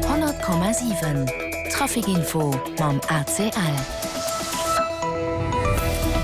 100,7 Trafic Info mam ACL.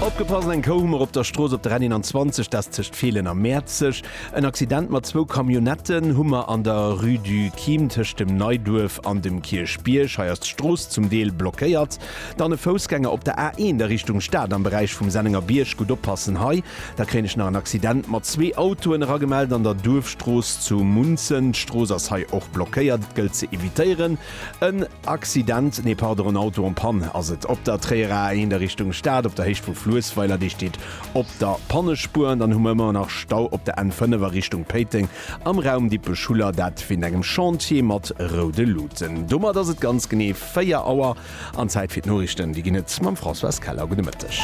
Opgepasst, Eng Kou hu mer op der Strooss op der N21, dat tëscht Feelen a Mäerzeg. En Accident mat zwou Camionnetten hu mer an der Rue du Chim tëscht dem Neiduerf an dem Kierchbierg. Hei ass d'Strooss zum Deel blockéiert. Dann e Foussgänger op der A1 a Richtung Stad am Beräich vum Sennenger Bierg. Gutt oppassen hei, da kréien ech nach en Accident mat zwee Autoen eragemellt an der Duerfstrooss zu Munzen. D'Strooss ass hei och blockéiert, et gëllt ze evitéieren. En Accident, nee pardon, en Auto en panne ass et op der Tréierer A1 a Richtung Stad op der Héicht vu Fluessweiler, dee steet op der Pannespuer. An dann hu mer ëmmer nach Stau op der N5 a Richtung Péiteng am Raum Dippech-Schuller, dat wéint engem Chantier mat roude Luten. Domat ass et ganz genee. 4 Auer an Zäit fir d'Noriichten. Déi ginn et mam Françoise Keller. Gudde Mëtteg.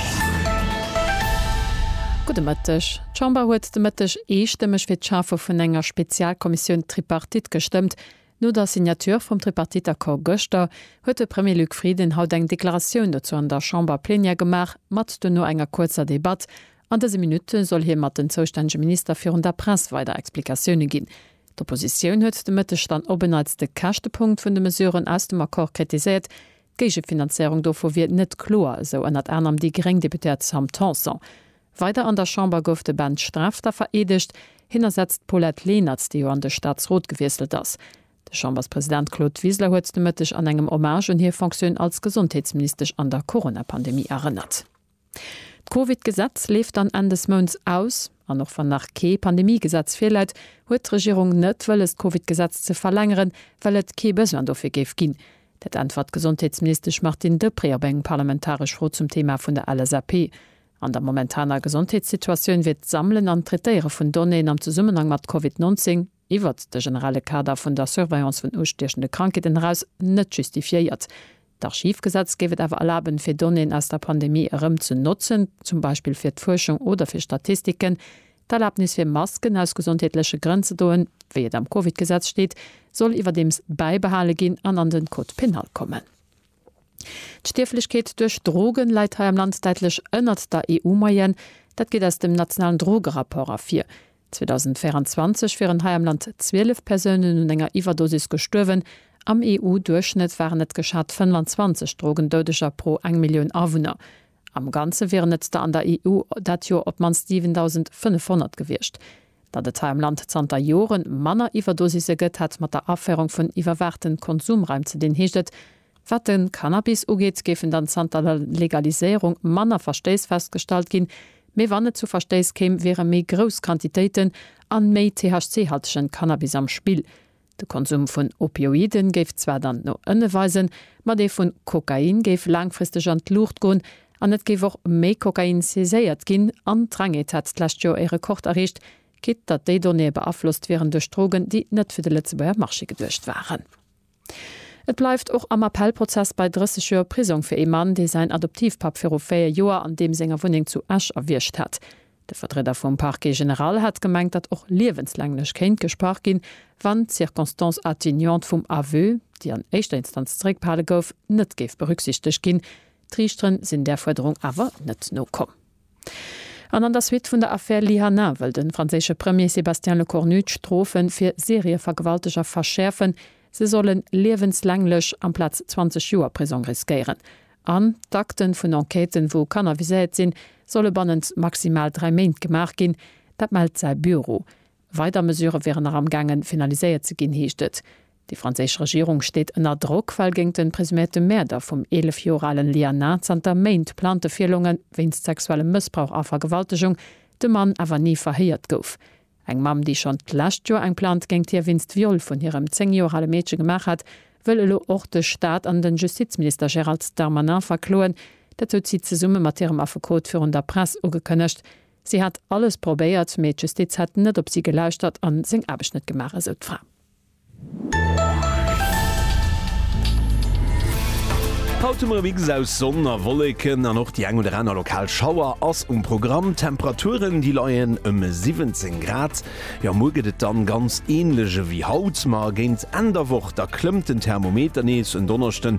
Gudde Mëtteg. D'Chamber huet de Mëtteg eestëmmeg fir d'Schafe vun enger Spezialkommissioun Tripartite gestëmmt. No der Signature vum Tripartite-Accord gëschter huet de Premier Luc Frieden haut eng Deklaratioun dozou an der Chamber-Plenière gemaach, mat duerno enger kuerzer Debatt. An dëse Minutte soll hie mat den zoustännege Minister virun der Press weider Explikatioune ginn. D'Oppositioun huet de Mëtteg dann op en Neits de Käschtepunkt vun de Mesuren aus dem Accord kritiséiert. D'Géigefinanzéierung dovu wier net kloer, esou ënnert anerem déi gréng Deputéiert Sam Tanson. Weider an der Chamber gouf de Ben Strafter vereedegt. Hien ersetzt d'Paulette Lenert, déi jo an de Staatsrot gewiesselt ass. De Chamberspresident Claude Wiseler huet de Mëtteg an engem Hommage un hir Fonctioun als Gesondheetsministesch an der Corona-Pandemie erënnert. D'Covid-Gesetz leeft dann Enn des Mounts aus. An och wann nach kee Pandemie-Gesetz virläit, huet d'Regierung net wëlles d'Covid-Gesetz ze verlängeren, well et kee Besoin dofir géif ginn. Dat äntwert d'Gesondheetsministesch Martine Deprez op eng parlamentaresch Fro zum Thema vun der LSAP. An der momentaner Gesondheetssituatioun wier d'Sammelen an d'Traitéiere vun Donnéeën am Zesummenhang mat Covid 19, iwwert de generelle Kader vun der Surveillance vun ustiechende Krankheeten eraus net justifiéiert. D'Archivgesetz géif et awer erlaben, fir Donnéeën aus der Pandemie erëm ze notzen, zum Beispill fir d'Fuerschung oder fir Statistiken. D'Erlabnis, fir Masken aus gesondheetleche Grënn ze doen, wéi et am Covid-Gesetz steet, soll iwwerdeems bäibehale ginn an an den Code pénal kommen. D'Stierflechkeet duerch Drogen läit hei am Land däitlech ënnert der EU-Moyenne. Dat geet aus dem nationalen Drogerapport ervir. 2024 wieren hei am Land 12 Persounen un enger Iwwerdosis gestuerwen. Am EU-Duerchschnëtt waren et geschat 25 Drogendoudeger pro eng Millioun Awunner. Am Ganze wieren et der an der EU dat Joer op d'mannst 7.500 gewiescht. Datt et hei am Land zanter Jore manner Iwwerdosisse gëtt, hätt mat der Aféierung vun iwwerwaachten Konsumraim ze dinn, heescht et. Wat de Cannabis ugeet, géifen dann zanter der Legaliséierung manner Verstéiss festgestallt ginn, mee wann et zu Verstéiss kéim, wiere méi grouss Quantitéiten a méi THC-haltegen Cannabis am Spill. De Konsum vun Opioiden géif zwar dann no ënne weisen, ma dee vun Kokain géif laangfristeg an d'Luucht goen an et géif och méi Kokain saiséiert ginn. An d'Drängeet hat d'lescht Joer ee Rekord erreecht, quitt datt déi Donnéeë beaflosst wieren duerch Drogen, déi net fir de Lëtzebuerger Marché geduecht waren. Et bleift och am Appellprozess bei 30 Joer Prisong fir ee Mann, dee säin Adoptivpapp viru 4 Joer an deem senger Wunneng zu Esch erwiergt hat. De Vertrieder vum Parquet général hat gemengt, datt och liewenslänglech kéint gesprach ginn, wann d'Circonstance atténuante vum Aveu, déi an éischter Instanz zeréckbehale gouf, net géif berücksichtegt ginn. D'Riichteren sinn där Fuerderung awer net nokomm. An an der Suite vun der Affär Lyhanna wëll de franséische Premier Sébastien Lecornu d'Strofe fir Serievergewalteger verschäerfen, se solle liewenslänglech amplaz 20 Joer Prisong riskéieren. An d'Akte vun Enquêten, wou Kanner viséiert sinn, solle bannent maximal dräi Méint gemaach ginn. Dat mellt säi Büro. Weider Mesurë wieren nach am gaangen finaliséiert ze ginn, heescht et. Déi franséisch Regierung steet ënner Drock, well géint den presuméierte Mäerder vum 11 Joer alen Lianah zanter Méint plante Virlonge wéinst sexuellem Mëssbrauch a Vergewaltegung de Mann awer ni verhéiert gouf. Eng Mamm, déi schonn d'lescht Joer eng Plainte géint hie wéinst Viol vun hirem 10 Joer ale Meedche gemaach hat, wëll elo och de Staat an de Justizminister Gérald Darmanin verkloen. Dat huet si zesumme mat hirem Affekot virun der Press ugekënnegt. Si hätt alles probéiert, mee d'Justiz hätt net op si gelauschtert a seng Aarbecht net gemaach, esou d'Fra. Haut hu mer e Mix aus Sonn a Wolleken an och déi eng oder aner lokal Schauer ass um Programm. D'Temperaturen, déi leien ëm 17 Grad. Jo, muer gëtt et dann ganz änlech ewéi haut, ma géint Enn der Woch, da klëmmt den Thermometer nees. En Donneschden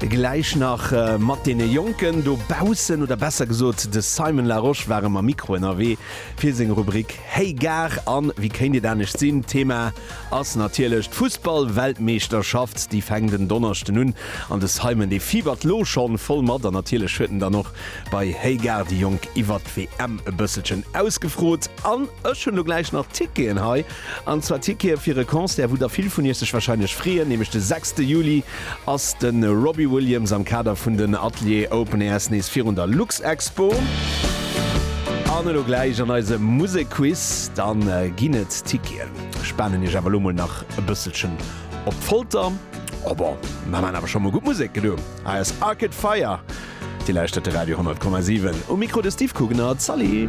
Gläich nach mat deene Jonken do baussen, oder besser gesot de Simon Larosche war ëm am Mikro ënnerwee fir seng Rubrik Hey Gare. An wéi kéint et anescht sinn, Thema ass natierlech d'Fussballweltmeeschterschaft, déi fänkt en Donneschden un an de Simon dee fibert lo schonn voll mat. An natierlech huet en dann och bei Hey Gare déi Jonk iwwert d'WM e bësselchen ausgefrot. An ech hunn lo gläich nach Ticketen hei, an zwar Tickete fir e Concert wou der vill vun iech sech wahrscheinlech freeën, nämlech de sechste Juli ass de Robbie Williams am Kader vun den Atelier Open Airs nees virun der Luxexpo. An elo gläich an eise Musekquiz, da ginn et Ticketen. Ech spanen Iech awer elo mol nach e bësselchen op d'Folter. Oh bon, mer maan awer scho mol gutt Musek. Elo hei ass Arcade Fire. Dir lauschtert de Radio 100,7. Um Mikro de Steve Kugener. Zalli!